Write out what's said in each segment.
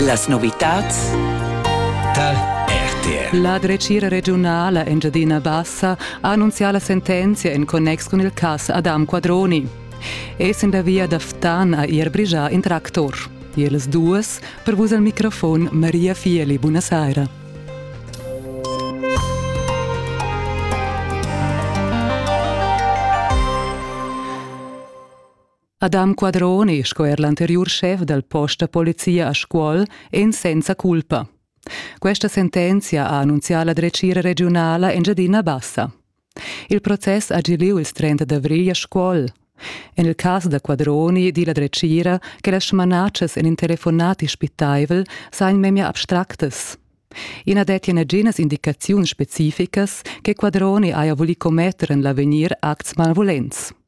Las novitads tal RTR. La dretgira regiunala Engiadina Bassa ha annunzià la sentenzia en connex cun il cas Adam Quadroni. Essend la via da Ftan ha er brigià in tractor. Iels duas per vus al microfon Maria Fieli. Buonasera. Adam Quadroni sco er l'anteriur schef dal post da polizia a Scuol èn senza culpa. Questa sentenzia ha annunzià la dretgira regiunala Engiadina Bassa. Il process ha gilì il 30 d'avrigl a Scuol. En il cas da Quadroni di la dretgira che las smanatschas en in telefonat ispitaivel sajan memia abstractas. I na dettia naginas indicaziuns specificas che Quadroni haja vulì commetter en l'avegnir acts malvulents.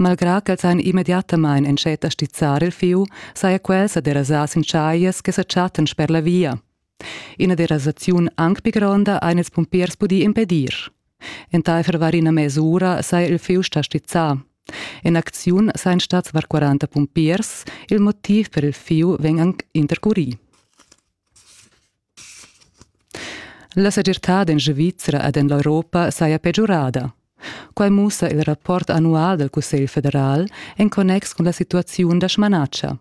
Malgrà ch'els han immediatamain entschet a stizzar il fieu, saja quel sa derasà sin chaglias che sa chattan sper la via. Ina derasaziun anc pli gronda han ils pumpiers pudì impedir. Entaifer var ina mes'ura saja il fieu stà stizzà. En acziun sajan stads var 40 pumpiers. Il motiv per il fieu vegn anc intercurì. La segirtad en Svizra ed en l'Europa saja pegiurada. Quai mussa il rapport annual dal Cussegl federal en connex cun la situaziun da smanatscha.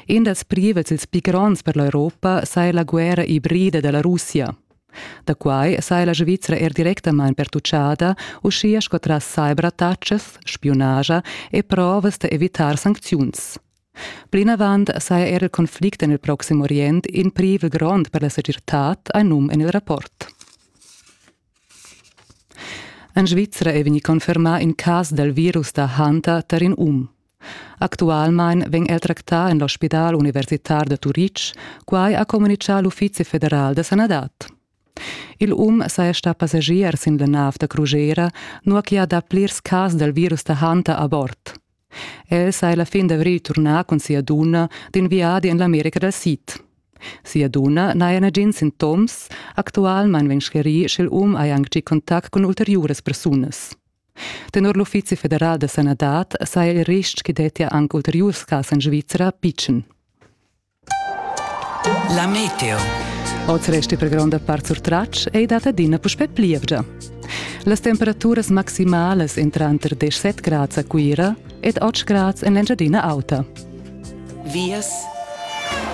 In dals privels ils pli gronds per l'Europa saja la guerra ibrida da la Russia. Da quai saja la Svizra er directamain pertutgada, uschia sco tras cyberattacas, spiunaja e provas da evitar sancziuns. Plinavant saja er il conflict en il Proxim Orient in privel grond per la segirtad, ha num en il rapport. En Svizra è vegnì confermà in cas dal virus da Hanta tar in um. Actualmain vegn el tractà en l'ospidal universitar da Turitg, quai ha communitgà l'Uffizi federal da sanadad. Il um saja stà passagier sin la nav da crusera, nua che ha dà plirs cas dal virus da Hanta a bord. El sai la fin d'avrigl turnar cun sia dunna d'in viadi en l'America dal Sid. Sia dunna n'haja nagins sintoms, actualmain vegn sclerì sch'el um haja anc gì contact cun ulteriuras persunas. Tenor l'Uffizi federal da sanadad saja il ristg che dettia anc ulteriurs cas en Svizra pitschen. La meteo. Oz resti per gronda part surtratg ei dat adina puspè plievgia. Las temperaturas maximalas en tranter 17 grads a Cuira ed 8 grads en l'Engiadina Auta. Vias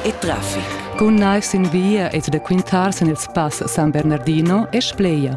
e traffic. Cun naivs sin via ed da quintar sin il spass San Bernardino e Spleia.